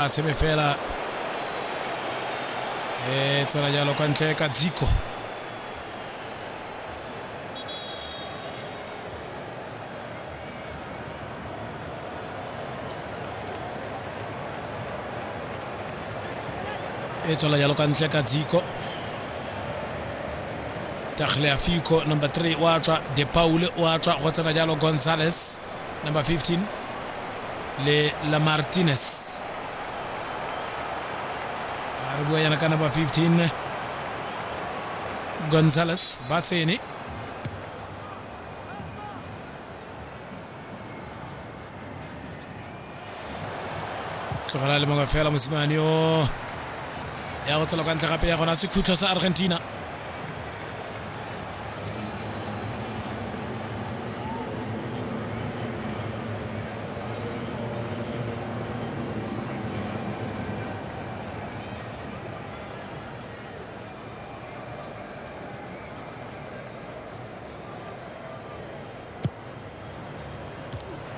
a tshebe fela e tswela jalo kwa ntle ka dziko e tswela jalo ka ntle ka dziko tagliafico number 3 wa tswa de paule wa tswa go tsena jalo gonzales number 15 le la martinez a re bua yana ka number 15 gonzales ba tsene tlogela le mongwe fela mosimane o ya go tsela kwa ntle gape ya gona sekhutlo sa argentina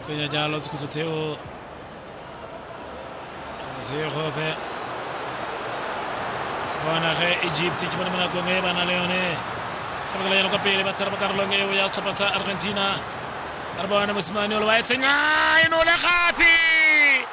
tsenya jalo sekhutlo seo segope bona ge egypt ke bone mo nakong e ba na le yone tshamekela yone kwa pele ba tshela mo karolong eo ya setlhopha sa argentina re bone mosimane o le wa e tsenya e nole gape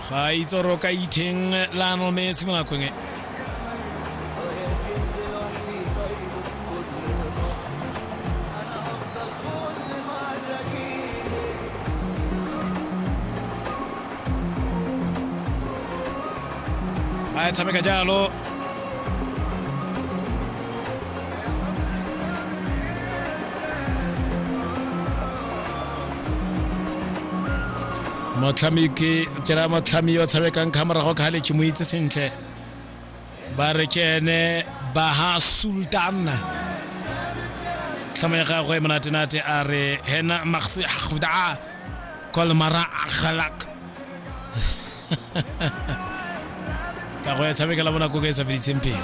ga a itsoroka itheng lionel messi mo nakong e ba e tshameka jalo motlhami ke tsela motlhami yo tshamekang ka morago ka le ke mo itse sentle ba re ke ene baha sultan tlhamo ya gagwe monatenate a re hena maxi hafda kolmara akhalak ka go ya tshamekela bonako ka e sa feditseng pele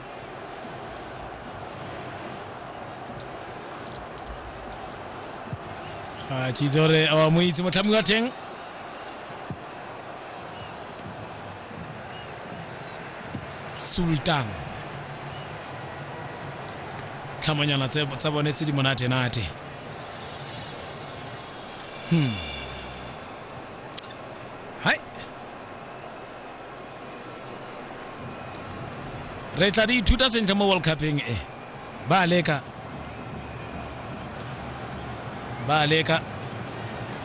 ga ke itse gore a mo itse motlhami wa teng sultan tlhamanyana tse- tsa bone tse di monate-nate hmm. re tla di ithuta sentle mo world cupeng e ba leka ba leka